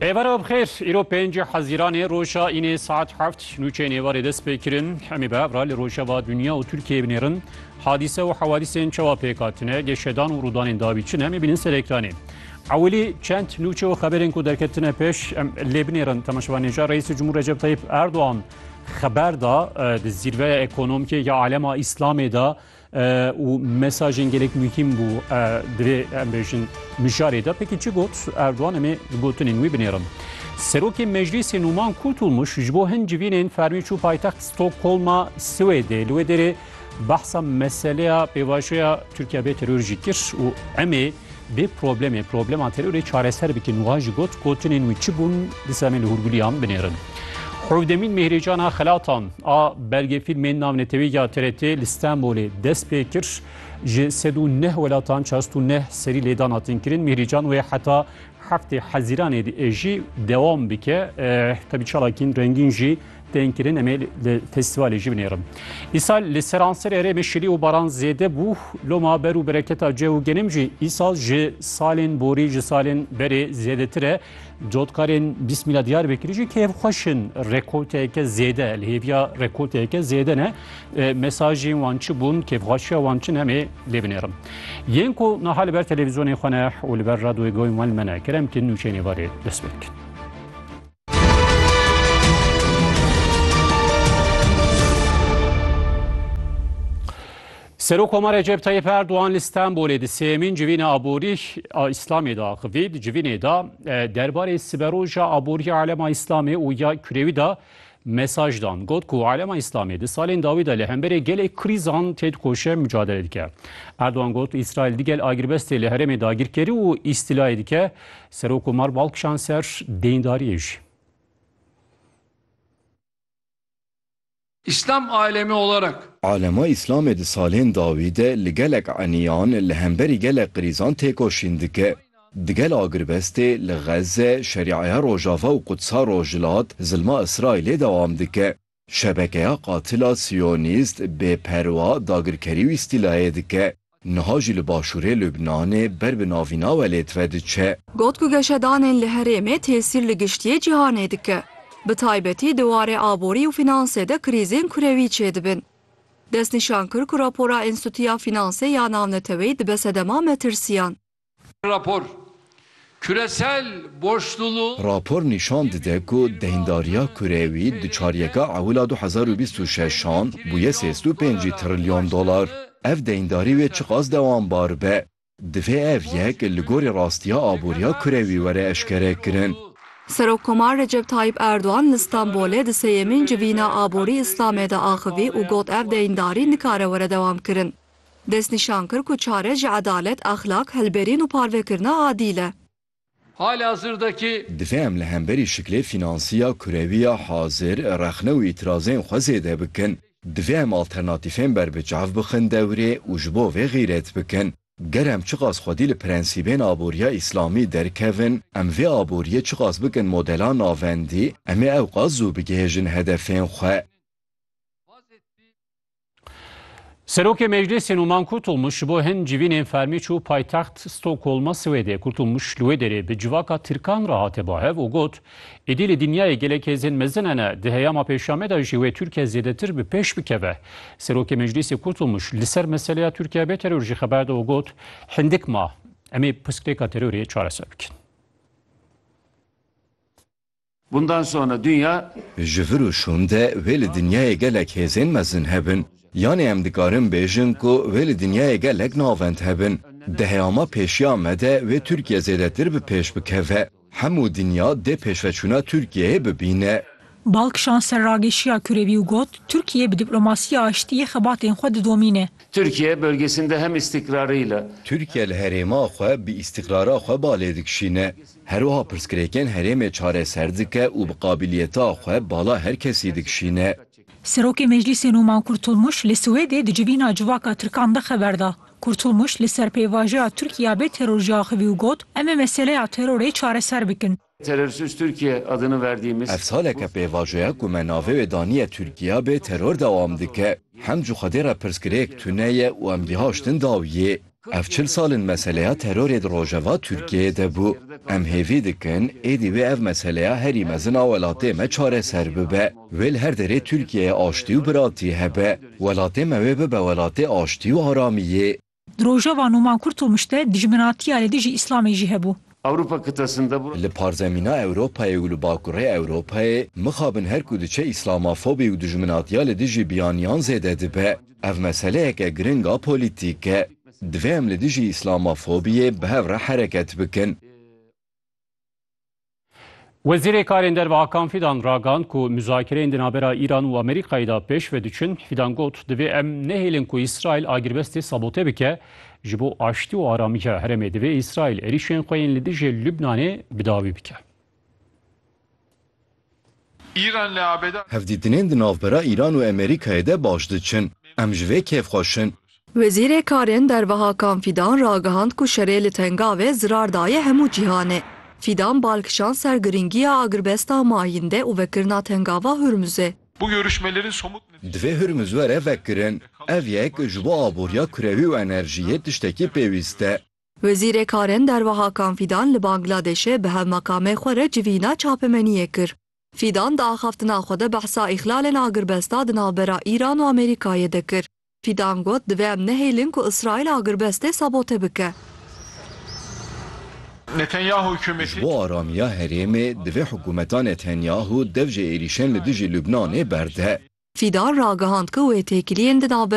Êvara bi xêr, îro pêncî Hezîranê roja înê saet heft nûçeyên êvarê dest pê kirin. Hemî bi evra li rojeva dinya û Tirkiyeyê binêrin. Hadîse û hewadîsên çawa pêk hatine, geşedan û rûdanên dawî çi ne em ê bînin ser ekranê. Ewilî çend nûçe û xeberên ku derketine pêş em lê binêrin temaşevanêja Reîsê Cumhur Recep Tayyip Erdoğan xeber da di zîrveya ekonomikê ya alema îslamê da û mesajên gelek muhîm bû divê em bêjin mijarê de pekî çi got Erdogan em ê gotinên wî binêrin. Serokê Meclîsê Nûman Kurtulmuş ji bo hin civînên fermî çû paytext Stockholma Swêdê li wê derê behsa meseleya pêvajoya Tirkiya bê teror jî kir û em ê Bê problemê problema terorê çareser bikin wan jî got, gotinên wî çi bûn disa em ê li hûrgiliyan binêrin. Hewdemîn mêhrêcana xelatan a belgefîlmên navnetewî ya TRT'ê li Stenbolê dest pê kir. Ji sed û neh welatan çast û neh serî lêdan hatin kirin. Mêhrêcan wê heta heftê Hezîranê diêjî dewam bike. Tebî çalakîn rengîn jî tên kirin em ê li festîvalê jî binêrin. Îsal li seranser herêmê şilî û baran zêde bû loma ber û bereketa cih û genim jî îsal ji salên borî ji salên berê zêdetir e cotkarên bîsmîla Diyarbekirî jî kêfxweş in rekolteyeke zêde li hêviya rekolteyeke zêde ne mesajên wan çi bûn kêfxweşiya wan çi em ê lê binêrin yên ku niha li ber televîzyonê xwe ne û li ber radyoyê goyên wan me ne kerem kin nûçeyên êvarê dest pê dikin. Serok Koma Recep Tayyip Erdoğan li Stenbolê di sêmîn civîna aborî a Îslamê de axivî. Di civînê de e, derbarê siberoja aboriya alema Îslamê û ya kurewî de mesaj dan. Got ku alema Îslamê di salên dawî de li hemberê gelê krîzan tê dikoşe mücadele dike. Erdoğan got Israel digel agirbestê li herêmê dagirkerî û îstîlayê dike. Serokkomar bal kişand ser deyndariyê jî. İslam alemi olarak. Alema Îslamê di salên dawî de li gelek eniyan li hemberî gelek qirîzan têkoşîn dike. Digel agirbestê li Xezze, Şerîaya Rojava û Qudsa Rojhilat zilma Îsraîlê dewam dike. Şebekeya qatila siyonîst bêperwa dagirkerî û îstîlayê dike, niha jî li başûrê Lubnanê ber bi navîna we lê tive diçe. Got ku geşedanên li herêmê tesîr li giştiyê cîhanê dike, bi taybetî di warê aborî û fînansê de krîzên kurewî çêdibin. Destnîşan kir ku rapora Înstîtuya Fînansê ya Navneteweyî dibe sedema metirsiyan. Rapor, Küresel borçluluğ. Rapor nîşan dide ku deyndariya kurewî di çaryeka ewila du hezar û bîst û şeşan bûye sêst û pênc trilyon dolar. Ev deyndarî wê çiqas dewambar be, divê ev yek li gorî rastiya aboriya kurewî were eşkerekirin. Serokkomar Recep Tayyîp Erdogan li Stenbolê di sêyemîn Civîna Aborî Îslamê de axivî û got ev deyndarî nikare were dewamkirin. Destnîşan kir ku çare ji edalet, exlaq, hilberîn û parvekirina adîl e. Halihazırdaki. Divê em li hemberî şiklê finansî ya kurewî ya hazir rexne û îtirazên xwe zêde bikin. Divê em alternatîfên berbiçav bixin dewrê û ji bo vê xîret bikin. Ger em çiqas xwedî li prensîbên aboriya îslamî derkevin, em vê aboriyê çiqas bikin modela navendî, em ê ewqas zû bigihêjin hedefên xwe. Serokê Meclîsê Numan Kurtulmuş ji bo hin civînên fermî çû paytext Stokholma Swêdê. Kurtulmuş li wê derê bi civaka Tirkan re hate bahev û got, Êdî li dinyayê gelek hêzên mezin hene, di heyama pêşa me de jî wê Tirkiye zêdetir bi pêş bikeve. Serokê Meclîsê Kurtulmuş li ser meseleya Tirkiye bê teror jî xeber da û got, Hindik ma, em ê pirsgirêka terorê çareser bikin. Bundan sonra dünya. Ji vir û şûn de wê li dinyayê gelek hêzên mezin hebin. Yanê em dikarin bêjin ku wê li dinyayê gelek navend hebin. Di heyama pêşiya me de wê Tirkiye zêdetir bi pêş bikeve. Hemû dinya dê pêşveçûna Tirkiyeyê bibîne. Balk Şanser rageşiya kurevî û got, Tirkiye bi diplomasiya aştiyê xebatên xwe didomîne. Tirkiye bölgesinde hem istikrarıyla. Tirkiye li herêma xwe bi istikrara xwe balê dikişîne. Herwiha pirsgirêkên herêmê çareser dike û bi qabîliyeta xwe bala her kesî dikişîne. Serokê Meclîsê Numan Kurtulmuş li Swêdê di civîna civaka Tirkan de xeber da. Kurtulmuş li ser pêvajoya Tirkiya bê teror jî axivî û got, Em ê meseleya terorê çareser bikin. Terörsüz Türkiye adını verdiğimiz Ev saleke pêvajoya ku me navê wê daniye Tirkiya bê teror dewam dike. Hemcu Xwedê re pirsgirêk tune ye û em gihaştin dawiyê. Ev çil sal in meseleya terorê di rojeva Tirkiyeyê de bû. Em hêvî dikin êdî wê ev meseleya herî mezin a welatê me çareser bibe. Wê li her derê Tirkiyeyê aştî û biratî hebe. Welatê me wê bibe welatê aştî û aramiyê. Di rojeva Nûman Kurtulmuş de dijminatiya li dijî Îslamê jî hebû. Li parzemîna Ewropayê û li bakurê Ewropayê mixabin her ku diçe Îslamafobî û dijminatiya li dijî biyaniyan zêde dibe. Ev meseleyeke giring a polîtîk e. Divê em li dijî îslamofobiyê bi hev re hereket bikin. Wezîrê Karên Derve Hakan Fîdan ragihand ku muzakireyên di navbera Îran û Amerîkayê de pêş ve diçin. Fîdan got, Divê em nehêlin ku Îsraîl agirbestê sabote bike. Ji bo aştî û aramiya herêmê divê Îsraîl êrîşên xwe yên li dijî Lubnanê bi dawî bike. Hevdîtinên di navbera Îran û Amerîkayê de baş diçin. Em ji vê kêf xweş in. Wezîrê Karên Derve Hakan Fîdan ragihand ku şerê li Tengavê zirar daye hemû cîhanê. Fîdan bal kişand ser girîngiya agirbesta mayîndê û vekirina Tengava Hurmuzê. Divê Hurmuz were vekirin. Ev yek ji bo aboriya kurewî û enerjiyê tiştekî pêwîst e. Wezîrê Karên Derve Hakan Fîdan li Bangladêşê bi hevmekamê xwe re civîna çapemeniyê kir. Fîdan di axaftina xwe de behsa îxlalên agirbesta di navbera Îran û Amerîkayê de kir. Fîdan got, Divê em nehêlin ku Îsraîl agirbestê sabote bike. Ji bo aramiya herêmê divê hikûmeta Netanyahu dev ji êrîşên li dijî Lubnanê berde. Fîdan ragihand ku wê têkiliyên di navbera